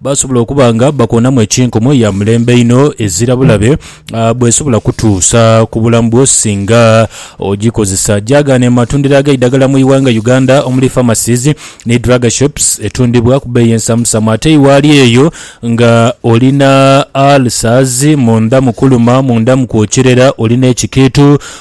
Basobola okuba nga bakoonamu ekinkomo ya mulembe inho ezira bulabe bw'esobola kutuusa ku bulamu bwo singa ogikozesa. Gyagaana ematundiro ag'eidagala mu ighanga Uganda omuli pharmacies ni drug shops etundibwa ku beeyi ensamusamu ate iwaali eyo nga olina ulcers, munda mukuluma, munda mukwokirera, olina ekikiitu,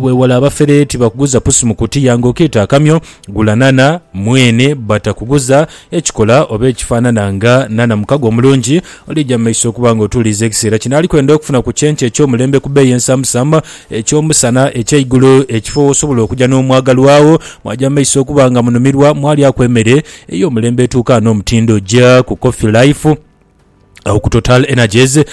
Bwewale abafere tibakuguza pusi mu kutiya nga okeeta akamyo, gula nhanha mwene batakuguza ekikola oba ekifanana nga nhanha mukago omulungi olija mu maiso okuba nga otuuliiza ekiseera kino ali kwenda okufuna ku kyenkya eky'omulembe ku beeyi ensamusamu eky'omusana eky'eigulu ekifo w'osobola okuja n'omwagalwawo mwaja mu maiso okuba nga munumirwa mwalyaku emere ey'omulembe etuukaana omutindo ja ku Coffee Life. agho ku Total Energies uh,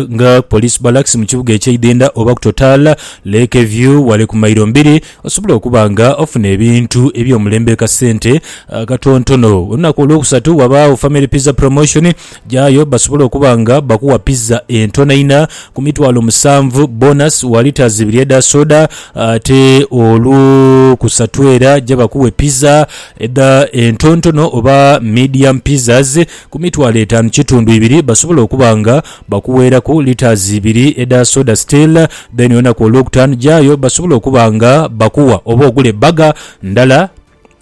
nga Police Barracks mu kibuga eky'eidhindha oba ku Total Lake View wale ku mairo mbiri osobola okuba nga ofuna ebintu eby'omulembe kasente akatontono. Uh, Olunaku olwokusatu wabaagho Family Pizza Promotion, gyayo basobola okuba nga bakuwa pizza entono ina ku mitwalo musanvu, bonus wa litres ibiri edha soda, ate olwokusatu era gya bakuwe pizza edha entontono oba medium pizzas ku mitwalo etaanu kitundu ibiri basobola okuba nga bakuweeraku litres ibiri edha soda still then olunaku olwokutaanu jaayo basobola okuba nga bakuwa oba ogule burger ndala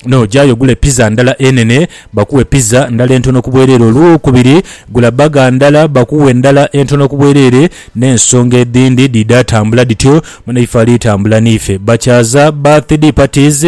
no jaayo ogule pizza ndala enene bakuwe pizza ndala entono ku bwereere olwokubiri gula burger ndala bakuwe ndala entono ku bwereere n'ensonga edhindi dhidha tambula dhityo mune ife ali tambula n'ife bakyaza birthday parties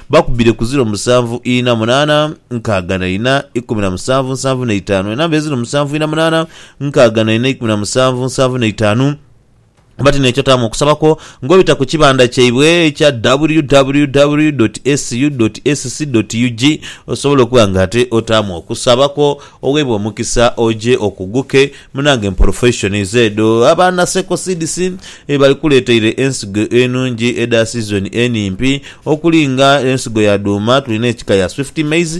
Bakubire ku ziro musanvu ina munaana nkaaga na ina ikumi na musanvu nsanvu na itaanu. Enamba eziro musanvu ina munaana nkaaga na ina ikumi na musanvu nsanvu na itaanu. Oba ti n'ekyo taamu okusaba kwo ng'obita ku kibanda kyaibwe ekya www dot ssu dot sc dot ug osobola okuba ng'ate otaamu okusaba kwo oweebwe omukisa oje okuguke Munange mporofeishonizi edho abaana Seko Seeds bebaalikuleeteire ensigo enungi edha sizoni enimpi okuli nga ensigo ya dhuuma tulina ekika ya Swift Maize,